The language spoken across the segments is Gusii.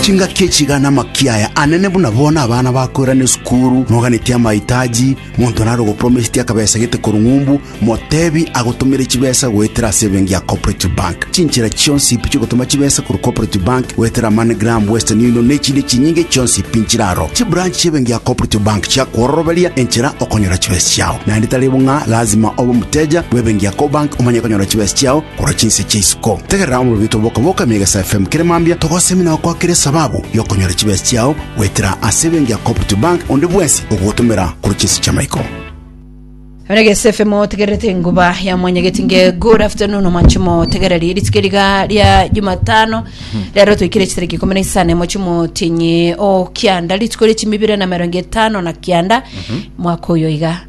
Chingaki echiga namakia aya anene buna bono abana bakoirana esukuru, moganetie amaitaji, monto nare ogopromisitia akabesa gete korwa ng'umbu, motebi agotomere chibesa goetera ase ebenki ya Cooperative Bank. Chinchera chionsi ipi chiogotoma chibesa korwa Cooperative Bank goetera MoneyGram, Western Union na echinde chinyinge chionsi ipi nchiraro. Chibranch chi'ebenki ya Cooperative Bank chiakworoberia enchera okonyora chibesa chiao. Naende tari bung'a lazima obe omoteja bw'ebenki ya Cobank omanye konyora chibesa chiao, Korwa chinse chia isiko tegerera omobibito bokaboka mega sa FM kere mambia togosemi na gokwakera esababu yokonyora chibesa chiao goetera ase ebenki ya Cooperative Bank onde bwensi ogogotomera korwa chinse chia maiko. Rege SFM otegererete enguba ya mwanyageti nge good afternoon omanche motegereri rituko eriga ria jumatano rero toikire chitariki ikumi na isano mochi motinyi o kianda rituko ria chimibire na merongo etano na kianda mwaka oyo iga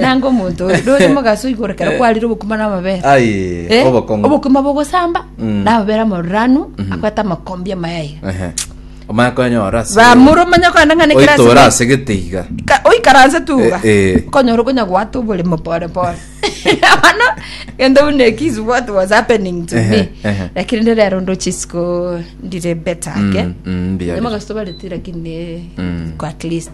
nanga omonto oyo nore mogaso igoro kero kwarire obokima na amabere Aye, Eh, obokong'u. obokima bogosamba Mm. na amabere amoruranu akwete amakombi amayaiga Ehe. omanye konyora ase- bamura omanya kogenda ng'ane kera ase- oitora ase geteiga Ka- oikaranse tuga Eh, eh. okonyora okonya gwata oboremo pore pore bono gende buna ekisi what was happening to Ehe, me ehe. lakini ndi rero ndo chisiko ndire better ake Mm, mm, mbuya. Nimogaso tobareti lakini Mm. kwa at least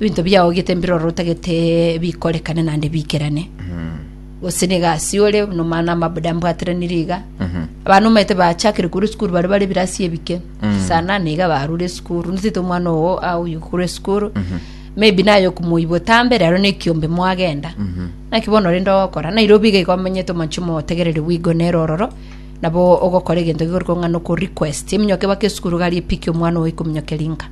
Ebinto biao gete mbiroro otagete bikorekane naende biikerane gose na egasi ore buna omwana amabuda ambwateranire iga abana omanyete bachakire korwa esukuru bare bare ebirasi ebike saa nane iga barure esukuru nitete omwana ogo aoyie korwa esukuru maybe naye okomoyia botambe rero na ekiombe mwagenda naki bono rende ogokora nairobi iga iga omenyete omanche omotegereri bwego nere ororo nabo ogokora egento gikore kong'a na okorequest eminyoke baka esukuru gari epiki omwana ogo ekominyokeria nka